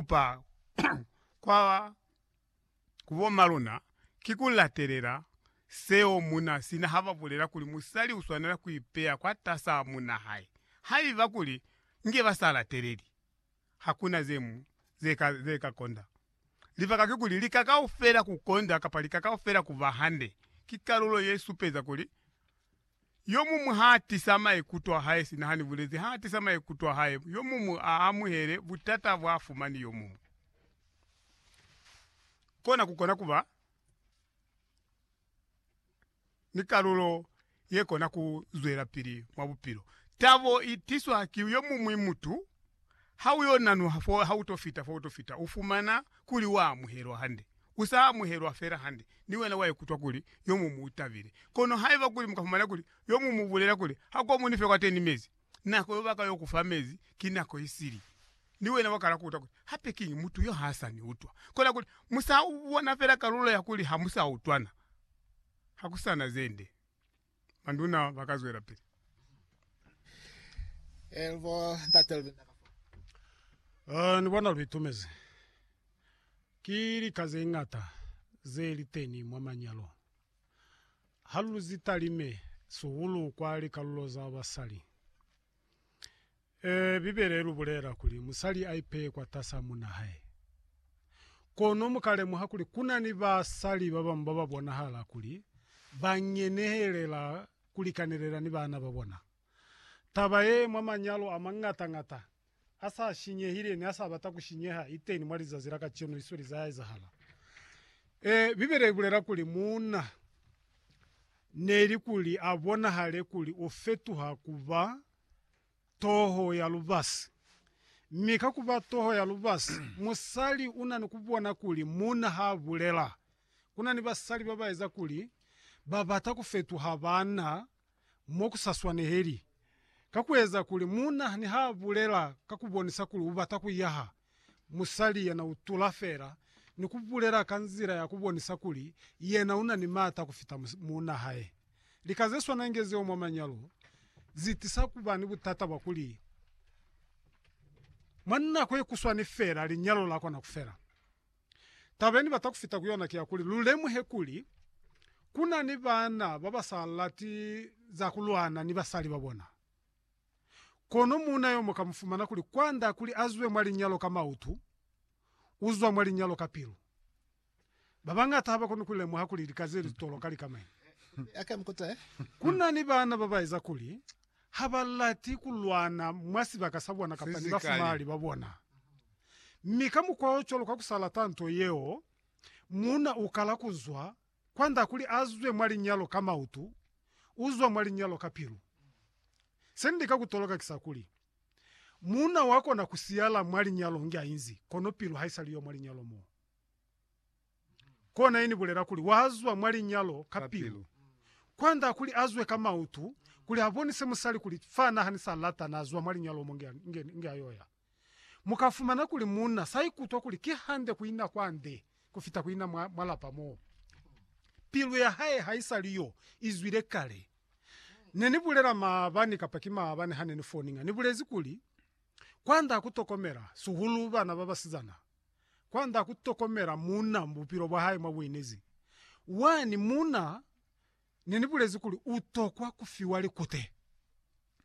kupa kwa ku bomaluna ki ku latelela seo muuna sina ha ba bulela kuli musali u swanela ku ipeya kwatas'a muuna hae. Haiba kuli nge ba sa lateleli, ha ku na ze ñwi ze ka konda. Libaka kikuli, lika kaufela ku konda kapa lika kaufela ku ba hande ki kalulo ye supeza kuli, Yomumu ha tisa maikuto a hae sina hani bulezi ha tisa maikuto a hae, yomumu a amuhele butata bwa fumani yomumu. Kona ku kona kuba ni kalulo ye kona ku zwelapili mwa bupilo. Tabo i tiswa ki yomumwi mutu. Ha u yo nanuha fo ha u to fita fo u to fita, u fumana kuli wa amuhelwa hande. U sa amuhelwa fela hande, ni wena wa ikutwa kuli yo muñwi u tabile. Kono haiba kuli mu ka fumana kuli yo muñwi u bulela kuli, Ha kwa mu ni fe kwateni mezi, nako yo ba ka yo ku fa mezi ki nako i sili, ni wena wa kala ku utwa kuli, Hape kiñi mutu yo ha sa ni utwa? Kona kuli, mu sa bona fela kalulo ya kuli ha mu sa utwana. Ha ku sa na ze nde. Manduna ba ka zwela pili. Elbo ntate Lubinda ka fa. Eh, ni bona lu itumezi. Ki lika ze ñata ze li teni mwa manyalo. Ha lu zitalime sihulu kwa likalulo za basali. Ee, Bibele ilubulela kuli musali aipeye kwatasaa munna hae. Kono mukalemuha kuli kuna ni basali babañwi bababonahala kuli bangenehelela kulikanelela ni baana babona. Taba yee mwa manyalo amañata-ñata asa shinyehile ni asa bata kushinyeha iteni mwa lizazi la kacenu isweli zaya ezahala. Ee, Bibele ibulela kuli muuna neli kuli abonahale kuli ufetuha kuba toho ya lubasi. Mi ka ku ba toho ya lubasi, musali u na ni ku bona kuli muuna ha a bulela. Ku na ni basali ba ba eza kuli ba bata ku fetuha baana mo ku sa swaneheli, ka ku eza kuli muuna ni ha a bulela ka ku bonisa kuli u bata ku yaha. musali yana utula fela ni kubulela ka nzila ya kubonisa kuli yena una ni maata kufita muuna hae. Lika zeswana inge zeo mwa manyalo zitisa kuba ni butata bwa kuli mwa nako yekuswani fela linyalo lakona kufela. Taba yenibata kufita ku yona ki ya kuli lulemuhe kuli kuna ni baana babasa lati za kulwana ni basali babona. Kono muuna yo mu ka mu fumana kuli kwanda kuli a zwe mwa linyalo ka mautu, u zwa mwa linyalo ka pilu. Ba bañata ha ba koni ku lemuha kuli lika ze li toloka li ka mañi. Ku na ni baana ba ba eza kuli ha ba lati ku lwana mwa sibaka sa bona kapa ni bafumahali ba bona. Mi ka mukwa o cwalo kwa ku sa lata nto yeo, muuna u kala ku zwa Kwand'a kuli a zwe mwa linyalo ka mautu, u zwa mwa linyalo ka pilu. Se ni lika ku toloka ki sa kuli, Muuna wa kona ku siyala mwa linyalo inge a inzi, kono pilu ha i sa li yo mwa linyalo mo. Kona ye ni bulela kuli wa zwa mwa linyalo ka pilu. Kwand'a kuli a zwe ka mautu, kuli a bonise musali kuli fa n'a ni sa lata n'a zwa mwa linyalo mo inge a yo ya. Mu ka fumana kuli munna sa ikutwa kuli ki hande ku ina kwa nde ku fita ku ina mwa, mwa lapa mo pilu ya hae ha i sa li yo i zwile kale. Ne ni bulela maabani kapa ki maabani ha ne ni foninga, ni bulezi kuli, Kwand'a ku tokomela, sihulu bana ba basizana, kwand'a ku tokomela munna mu bupilo bwa hae mwa buinezi. Wani munna Ne ni bulezi kuli u tokwa ku fiwa likute.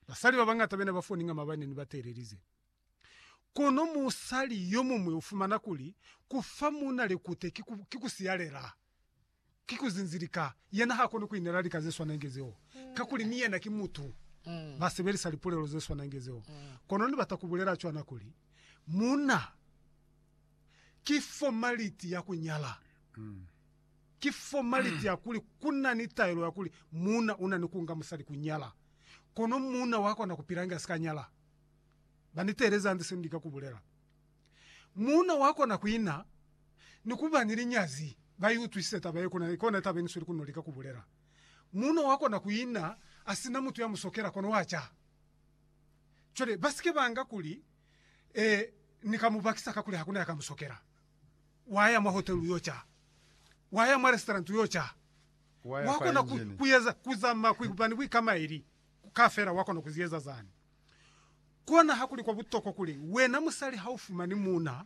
Basali ba bañata be ne ba foninga mabani ne ba teelelize. Kono musali yo muñwi u fumana kuli, Ku fa muuna likute ki ku, ki ku siyalela. Ki ku zinzilika. Yena ha koni ku inela lika ze swana inge zeo, kakuli ni yena ki mutu. Ba sebelisa lipulelo ze swana inge zeo. Kono ni bata ku bulela cwana kuli, Muuna ki fomaliti ya ku nyala. Ki fomaliti ya kuli ku na ni taelo ya kuli muuna u na ni ku nga musali ku nyala, kono muuna wa kona ku pila inge a si ka nyala. Ba ni teelezi hande se ni lika ku bulela. Muuna wa kona ku ina ni ku ba ni linyazi. Ba i utwisise taba ye, kono ki ona taba ye ni sweli ku no lika ku bulela. Muuna wa kona ku ina a si na mutu ya mu sokela, kono wa ca. Cwale ba si ke ba nga kuli, Ee, ni ka mu bakisa kakuli ha ku na ya ka mu sokela. Wa ya mwa hotelu u yo ca. Wa ya mwa restaurant u yo ca. Wa ya Wa kwa kona ku, engine. ku eza, ku zama ku ba ni buikamaeli kaufela, wa kona ku zi eza zani. Kona hakuli kwa butokwa kuli wena musali ha u fumani muuna,